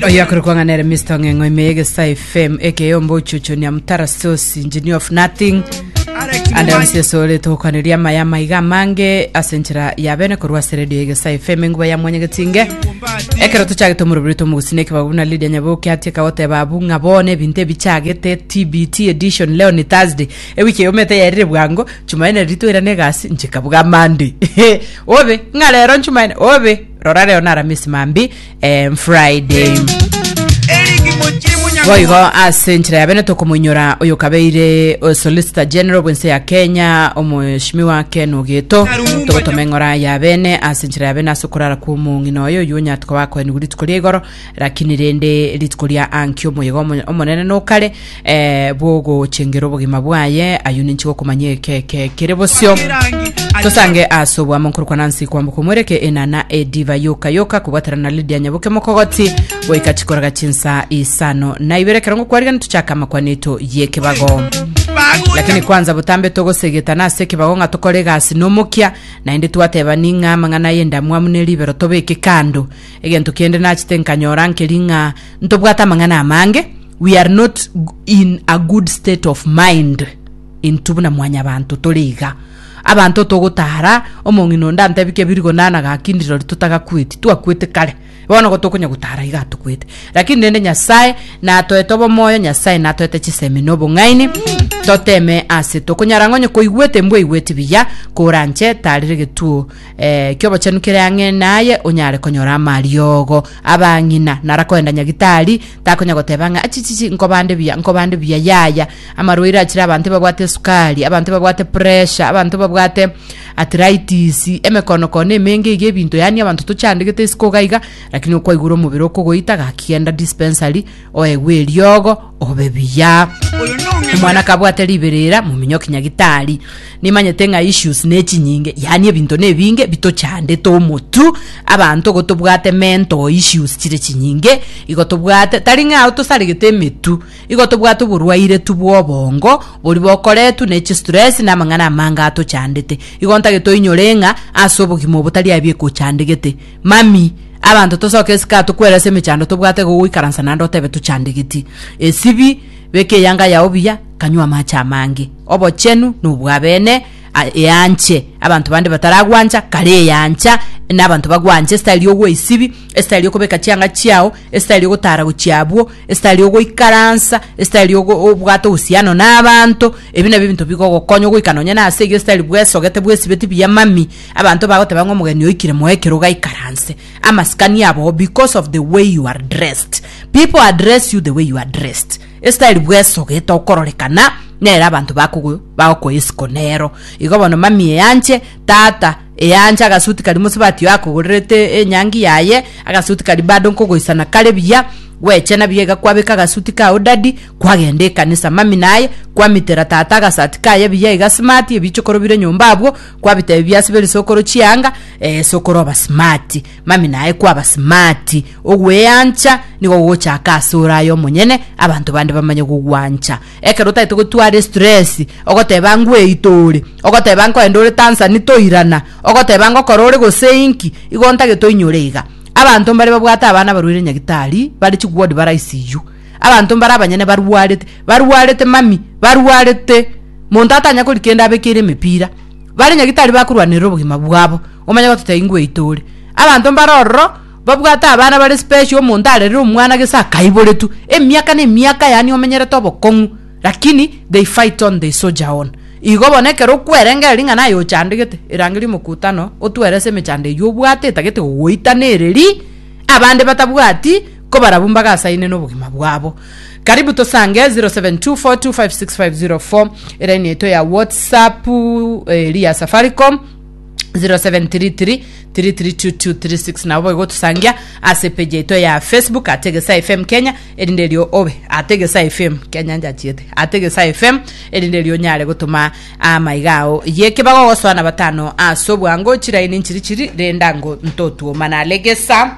oyakore kwang'anere mr ng'eng'o ime egesa fm ekeyomba ochuchunia mutara sosi engineer of nothing ande yonsi esore togokwaneria amaya amaiga amange ase enchera ya bene korwa ase redio egesa fm enguba ya mwanyagetinge ekero tochagete omorobiri tomogusina ekebabu na lidia nyaboke atie kagoteba abu ng'a bono ebinto ebichagete tbt edition leo ni thursday ewiki eyomete yaerire bwango chumaine riria toirana egasi nchikabuga monday obe ng'a rero nchumaine obe rora rero naramisi mambi eh, friday boigo ase enchera ya bene tokomoinyora oyo kabeire o solicitor general bwense ya kenya omoshimi wa ken ogeto togotoma eng'ora ya bene ase enchera ya bene ase okorara kwa omong'ina oyo oyo onyatoka bakoenigwa rituko ria igoro lakini rende rituko ria anki omoyega omo- omonene nokare eh, bw'ogochengera obogima bwaye, ayio ninche gokomanya ekeke kere bosio. Tosange ase obwamo nkorokwa Nancy kwamboka omwereke enana ediva yoka yoka kobwatera na Lydia Nyabuke mokogoti goika chikoraga chinsa isano na ibere ekero ngokwarigani tochake amakwani eto yekebago lakini kwanza botambe togosegetana ase ekebago ng'a tokore egasi nomokia naende twatebani ng'a amang'ana ay'endamwamu ne ribero tobeke kando Egento kende nachete nkanyora nkeri ng'a ntobwate amang'ana amange, we are not in a good state of mind intwe buna mwanyabanto tore iga. Abanto togotara, omong'ina onde antebi kebiri gona na gakindi rori totagakueti, twakuete kare. Bono igo tokonya gotara iga atokuete. Lakini rende Nyasae natoete obomoyo, Nyasae natoete chisemi na obong'aini, toteme ase tokonyara ng'onye koigwete mbwaigweti buya, koranche tarire getuo eh, ki'obochenu kere ang'e naye onyare konyora amariogo abang'ina nara koenda nyagitari takonya goteba ng'a achichichi nkobande buya nkobande buya yaya amarwaire achire abanto babwate esukari abanto babwate pressure abanto babwate arthritis emekono kono emenge iga ebinto yani abanto tochandegete isiko iga iga lakini okwaigure omobere okogoita gaki genda dispensary oegwe eriogo obe buya omwana kabwate riberera mominyoki nyagitari nimanyete ng'a issues ne chinyinge yaani ebinto na ebinge bitochandete omotu abanto igo tobwate mental issues chire chinyinge igo tobwate tari ng'a ao tosaregete emetu igo tobwate oborwaire tu bwa obongo bori bokoretu na echistress na amang'ana amange atochandete igo ntagete oinyore ng'a ase obogima obo tari abiekochandegete Mami, abanto tosoke esike aa tokwere ase emechando tobwate igo goikaransa naende otebe tochandegeti. Esibi, beka eyanga yao buya, kanywa amache amange. Obochenu nobwabene, a, eanche abanto bande bataragwancha, kare eyancha, na abanto bagwanche esitari yogwa esibi, esitari yokobeka chianga chiao, esitari yogotara gochia abwo, esitari yogoikaransa, esitari yogo obwate ohusiano na abanto, ebi nabio ebinto bigogokonya ogoika nonye nase eyio esitari bwesogete bwesibeti buya mami. Abanto bagoteba ng'a omogeni oikire moe ekero gaikaranse amasikani abo because of the way you are dressed. People address you the way you are dressed. Estyle bwesogete okororekana nere abanto bakogo bagokoa esiko nero. Igo bono mami eyanche, tata, eyanche agasuti karia mosubati oye akogorerete enyangi yaye, agasuti karia bado nkogoisana kare buya, gweche nabuya iga kwabeka agasuti kao daddy, kwagenda ekanisa mami naye, kwamitera tata agasati kaye buya iga smart, ebichokoro bire nyomba abwo, kwabita ebi biase biri sokoro chianga eh, sokoro oba smart mami naye kwaba smart ogweancha nigo gochaka ase ore aye omonyene abanto bande bamanye gogwancha ekero otagete gotwara stress ogoteba ngweito ore ogoteba nkoende ore tansani toirana ogoteba ngokora ore gosenki igo ntagete oinyore iga abanto mbare babwate abana barwaire nyagitari bare chigwodi baraisiyu Abanto mbare abanyene barwarete, barwarete mami, barwarete, monto atanya kori kende abekeire emepira, bare nyagete tari bakorwanerera obogima bwabo, omanye gototebia ingweite ore. Abanto mbare ororo babwate abana bare special omonto arerire omwana gese akaiboretwe emiaka na emiaka yaani omenyerete obokong'u lakini they fight on they soldier on. Igo bono ekero okwerengera ring'ana aye ochandegete, erangeria omokutano otwerese emechando eyio obwate etagete gogoitanereria abande batabwati. Kobarabwo mbagasaine nobogima bwabo. Karibu tosange 0724256504 eraini yaito ya whatsapp eri ya safaricom 0733332236 nabo boigo otosangia ase page yaito ya facebook ate gesa fm kenya erinde erio obe ate gesa fm kenya njachiete ate gesa fm erinde erio onyare gotoma amaiga ao yekebaga ogosoa na batano ase obwango chiraini nchiri chiri renda ngo ntotuoma nare gesa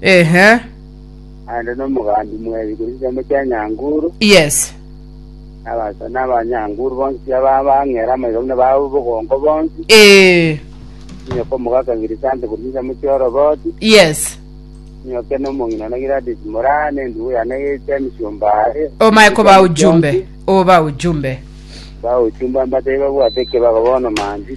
Ehe. naende nomogambi mw'ebi korwa chinsemo chia Nyanguru, Yes. na abasa- na Abanyanguru bonsi tiga ba- bang'ere amaiga buna babu bogongo bonsi, Eh. Nyoka omogaka Girisante korwa chinsemo chia Oroboti, Yes. Nyoke nomong'ina one Giladis Moraa, na endugu yane Yetsia emisiomba are. Omae koba ujumbe. Oba ujumbe. Ba ujumbe mbatebi babwate ekebago bono manti.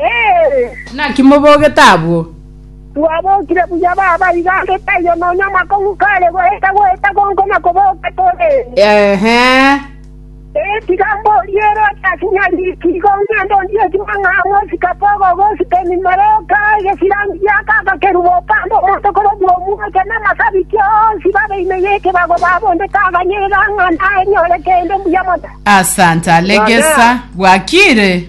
Ee. Naki mobogete abwo? Twabokire buya baba iga ande taiyo nonya amakong'u kare goeta goeta gonko na koboka tore. Eeh. Ee, tiga mborie ere otasinya riiki, igo ngende ondie ekimang'a amo esikapu ogogo esiteni Meroka, egesirani gia k'agakerubu opande omonto korobua omweke, na amasabiti onsi babe ime y'ekebago babondete aganyerera ng'a naenyore kende mbuya mono. Asante, alegesa, bwakire.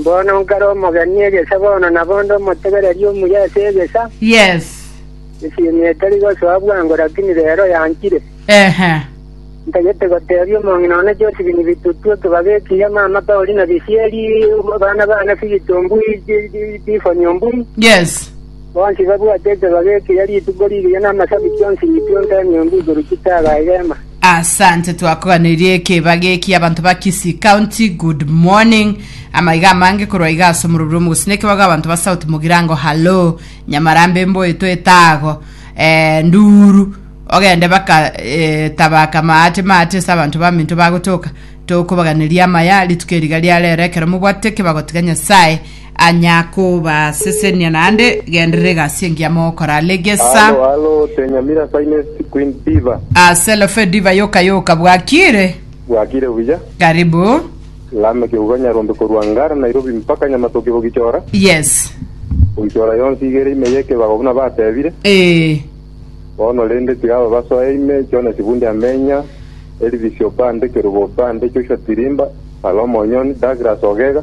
Mbono nkare omogeni egesa bono nabonde omotegereri omuya ase egesa. Yes. Esimi etari gosoa bwango lakini rero yanchire. Ehe. Ntagete gotebia omong'ina one Josephine Bitutu ekebago ekiya mama Paulina Bisieri, abana bane Philip Ombui, Tiffany Ombui. Yes. Bonsi babwate ekebago ekiya rituko rigiya na amasabiti onsi Nitio Ntemi Ombui korwa chitaga egema. Asante twakoganirie ekeba geki abanto ba Kisii County good morning amaiga amange korwa iga ase omorobio omogosina ekebago abanto ba South Mugirango hallo Nyamarambe mboeto etago eh, nduru ogende baka eh, tabaka maate maate ase abanto baminto bagotoka tokobaganiria amaya rituko eriga riarero ekero mobwatete ekebago tiga Nyasaye Anya kobasesenia naende, genderera egasi engiya mogokora. Legesa. Alo alo the Nyamira finest queen diva. Aselofe diva yoka yoka bwakire. Bwakire buya. Karibu. Lame keuga nyarombe korwa Ngara Nairobi mpaka Nyamatoke Bogichora. Yes. Bogichora yonsi igere ime yekebago buna batebire. Eeh. Bono rende tiga aba basoe ime, Jonas Bundi Amenya, Elvis Obande, Kerubo Obande, Joshua Tirimba, Salome Onyoni, Douglas Ogega,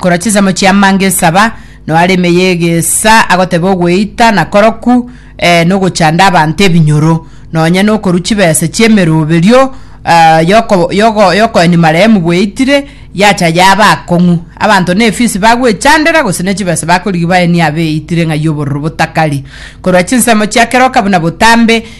korwa chinsemo chia manga esaba, noe are ime y'egeesa agoteba ogweita na koroku, eh, na ogochanda abanto ebinyoro, nonya nokorwa chibesa chi'emeroberio ah, yoko- yogo- yokoenia marehemu bweitire, yacha yaba akong'u. Abanto na efisi bagwechandera gose ne chibesa bakorigia baenie abeitire ng'ai obororo botakari. Korwa chinsemo chia keroka buna botambe,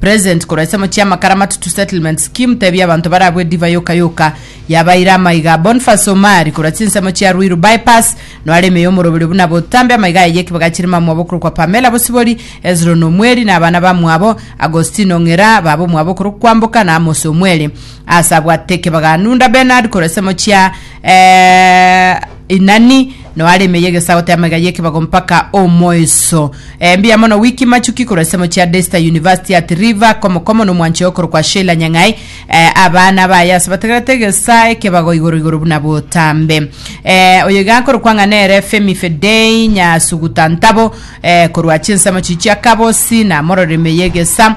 President korwa ensemo chia amakara amatutu settlement scheme tebia abanto barabwe ediva yoka yoka yabaire amaiga Boniface Omari korwa chinsemo chia Ruiru bypass noare ime yomoroberio buna botambe amaiga aye yekibaga chire mamwabo okorokwa Pamela Bosibori Hezron Omweri na abana bamwabo Agostino Ng'era baba omwabo okorokwa Kwamboka na Amos Omweri ase abwate ekebaga Nunda Bernard korwa ensemo chia eh, Inani, Noa aremeye egesago te amaiga y'ekebago mpaka omoiso. Eh, mbuya mono Wiki Machuki korwa ensemo chia Daystar University at River, komokomo n'omwanchio okorokwa Sheila Nyang'ai. Eh, abana baye ase bategerete egesa ekebago igoro igoro buna botambe. Eh, oyo iga akorokwa ng'a nere Femi Fedei Nyasuguta Ntabo, eh, korwa chinsemo chichia Kabosi, namororemeye egesa.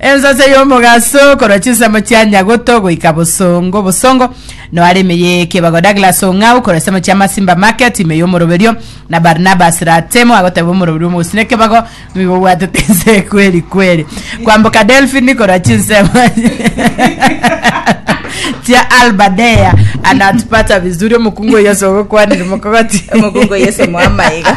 Ensase y'omogaso korwa chinsemo chia Nyagoto goika Bosongo Bosongo noare ime y'ekebago. Douglas Ong'au korwa ensemo chia Masimba Market ime y'omoroberio na Barnabas Ratemo agoteba omoroberio omogusii nekebago nigo obwatete ense kweri kweri. Kwamboka Delphine korwa chinsemo chia Alba Dea anatupata vizuri omokungu o Yeso ogokwanire mokogoti. Omokungu o Yeso moamaiga.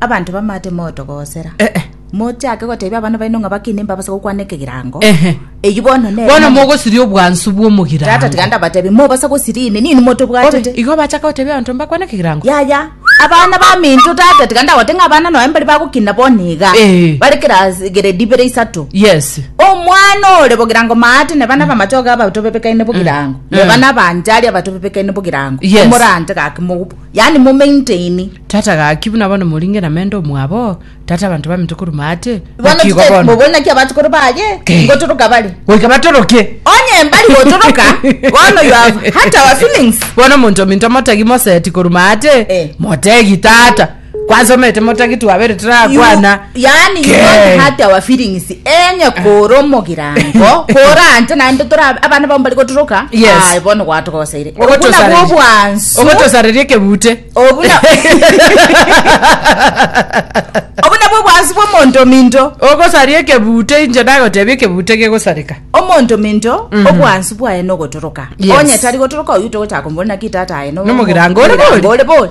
Abanto bamate motogosera. Eh, eh. Mochake gotebia abana baino ng'a bakine mbabase gokwana ekegirango. Ehe. Eyio bono nere. bono namo- mogosiria obwansu Tata bw'omogirango tiga ndabatebi, mobasa gosiria ime, nini motobwatete. Obe, igo bachaka gotebia abanto mbakwane ekegirango Yaya, abana baminto tata, tiga ndagote ng'a abana noe mbari bagokina bono iga. Eh. Bare class grade ibere isato. yes omwana ore bogirango maate neba nabamachoge abatobebekaine bogirango Mm. neba nabanjari abatobebekaine bogirango Yes. omorante gaki mogup Yaani mo maintain. Tata gaki buna bono moringe na mende omwabo, tata abanto baminto koruma ache, Bono bokigo tite bono. mobori naki abatukuru baye Ke. ngotoroka bari. Goika batoroke. Onye mbari gotoroka bono you have hurt our feelings. Bono monto minto motagi moseti koruma ache, Eh. motegi tata. Kwansomete motagi twabere You- turakwana. yaani you don't Okay. hurt our feelings enye kore omogirango kore ante naende tore ab- abana babo bari gotoroka Yes. aye bono gwatogosaire obuna Ogotosareria. bwobwansu ogotosareria ekebute obuna obuna bwobwansu bw'omonto ominto ogosaria ekebute inche nagotebia ekebute gegosareka omonto minto obwansu bwaye nogotoroka Yes. onye tari gotoroka oyu togochaka komborera ki tata aye no- Nomogirango ore bori. ore bori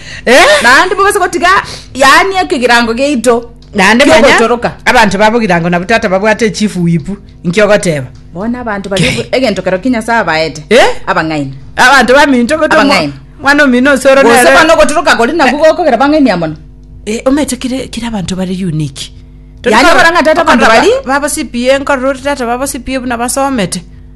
Naende mogase gotiga yaani ekegirango giaito Naende manya ki'ogotoroka. abanto babo girango nabu tata babwate echifu wipu inki ogoteba Bono abanto bari obo- egento kero ki Nyasae abaete Eh? abang'aini. abanto baminto goto mwa- Abang'aini. mwana omino osoro Gose nere- bono ogotoroka kori nabwo gokogera bang'ainia mono. Eh, omete kire kire abanto bare unique Yaani barang'a tata abanto bari- babo CPA nkorora ore tata babo CPA buna basomete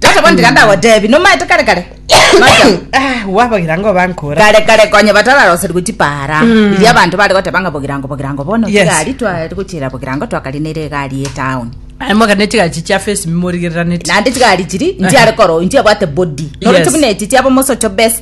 Tata bono tiga ndagotebi, nomaete kare kare. Macha. Ah, wabagira ngo bankora. kare kare konya batararoserigwe chipara iria abanto bare goteba ng'a bogirango bogirango bono Yes. chigari tware gochira bogirango twakarinere egari etown Aye mogane chigachi chia face mimorigereraneti. naende chigari chiri nchiare koro nchiabwate body Yes. noroche buna echi chiaba mosocho best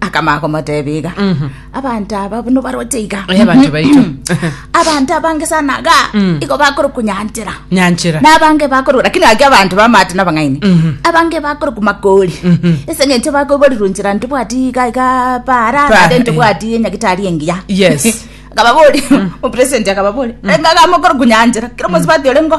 akamanya komotebia iga abanto aba buna baroche iga Oye abanto baito. abanto abange sana iga igo bakoroku nyanchera Nyanchera. nabange bakoroku lakini ake abanto bamate nabang'aini abange bakoroku makori ese ng'encho bakoborirwe nchera ntibwati iga iga para Para, nade eh. ntibwati enyagitari engiya Yes. akababori opresenti akababori engaga mokoroku nyanchera kero mosi bati ore ngo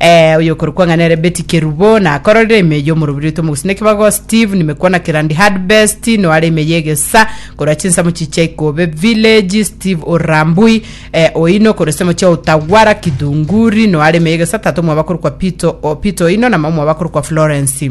Eh, oyokorokwa ng'a nere Betty Kerubo nakororire ime eyio omorobiri oito omogusii nekibago Steve nimekwana Kirandi Hardbest noare ime ya egesa korwa chinsemo chichia Ikobe Village Steve Orambui eh, Oino korwa esemo chia Utagwara Kidhunguri noare ime ya egesa tata omwabo akorokwa Peter, o, Peter Oino na mama omwabo akorokwa Florence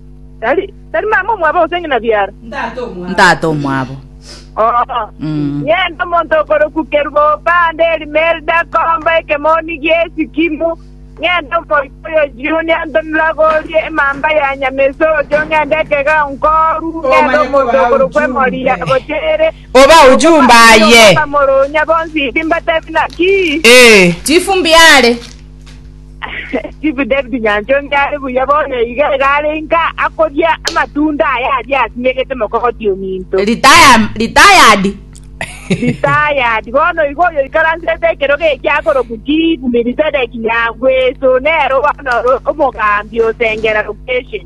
Tari mama omwabo gose ng'ina biara? Ntato omwabo. Ng'ende omonto okorokwa Kerubo opande Elimelda komba ekemoni gi'esikimu, ng'ende omoika oyo jioni antonire agorie emamba ya nyamesocho, ng'ende ekega nkoru, ng'ende omonto okorokwa Emoria gocha ere, Oba ojumba aye. Okoba moronya bonsi timbatebi naki? Ee. Chifu mbiare. Chief David Nyanchonge are buya bono iga iga are inka akoria amatunda aya aria asimegete mokogoti ominto. Retire- retired Retired. Bono igo oyo ikaransete ekero geki akorokwa Chief Melchizedek Nyangweso nero bono ore omogambi osengera location.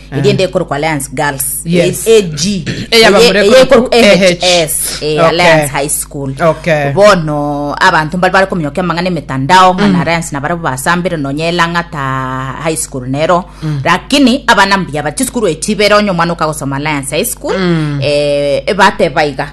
egende ekorokwa alliance girls Yes. eh, ag Eyaba Eye- mure eye koro- ekorokwa AH. ahs eh, Okay. alliance high school Okay. bono abanto mbari bari kominyoka amang'ana emetandao ng'ana Mm. alliance nabare basambire nonya elang'ata high school nero Mm. lakini abana mbuya bati sukuru echibere onye omwana okagosoma alliance high school Mm. eh, ebateba iga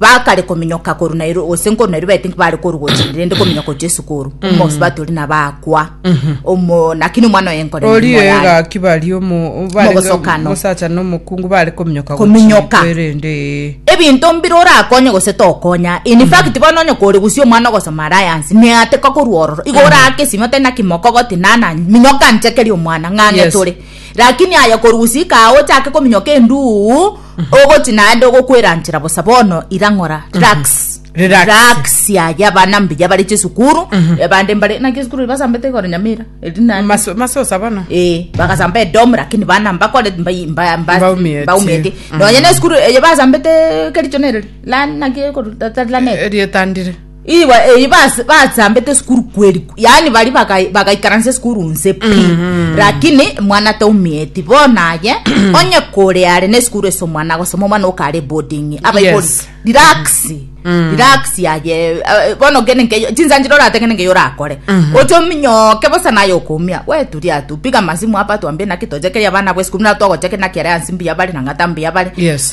Bakare kominyoka koru Nairobi gose nkoru Nairobi I think bare koru gochende rende kominyoka gochia esuko oru omosubati ori nabo akwa omo lakini omwana oye nkore Orio nyuma yaye. egaki bari omo bare Mogosokano. mosacha na omokungu bare kominyoka Kominyoka. gochia erende ee. ebinto mbire orakonye gose tokonya in fact bono onye kore gusii omwana ogosoma alliance neateka korwa ororo igo oraake esimi otari naki mokogoti nana minyoka nchekerie omwana ng'a ang'e Yes. tore lakini aye koru gusii kaa ochake kominyoka enduuu Ogoti naende ogokweranchera bosa bono ira ng'ora relax Relax. relax yaya abana mbuya bare chisukuru abande mbare naki esukuru basambete igoro nyamira eri nani Maso- masosa bono Eh, bagasamba edomu lakini bana mbakore mbai- mba- mba- Baumieti. baumieti Mm. nonya na esukuru eye basambete kericho nereri lani naki ekoro- ta- ta- lanet. erietandire Igo eyi basambete esukuru kweri yaani bari bagaikaransa esukuru nse pi mm-hmm. lakini mwana taumieti bono aye onye kore are na esukuru ase omwana agosoma omwana okare boarding abaikori relax mm. relax yaye eh, bono gene nkeyo chinsanchire orate gene nkeyo orakore mm-hmm. ochominyoke bosa naye okomia weturia tu piga masimu hapa tuambie naki tochekeria abana bwa esukuru na twagochekeri naki are ansi mbuya bare na ng'ata mbuya bare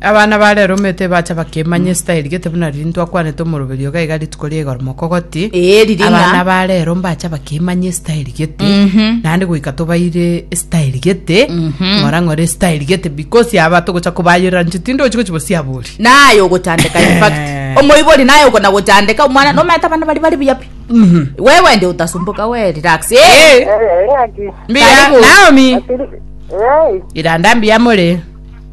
Abana ba rero omete ebacha bakemanya esitayeri gete buna riria ntwakwanete omoroberio iga iga rituko ria igoro moko goti Eh, riria ng'a- abana ba rero mbacha bakemanya esitayeri gete Mhm. naende goika tobaire esitayeri gete Mhm. ng'ora ng'ora esitayeri gete because aba togocha kobayorera nche tindi ochi gochi bosiabori naye ogochandeka in fact Eh. omoibori naye okona gochandeka omwana nomanyete abana bari bari buya pi wewe ndi utasumbuka we relax eh Eh, Eh, ng'aki? mbiya Karibu. naomi Atiri- Eh, iranda mbiya more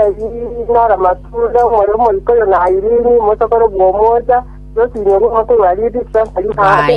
Erio Ramatunda, omorero omoika oyo nairiri, omosokoro bw'omocha, nosinyorwe omote bwa Ribika, ari nabe.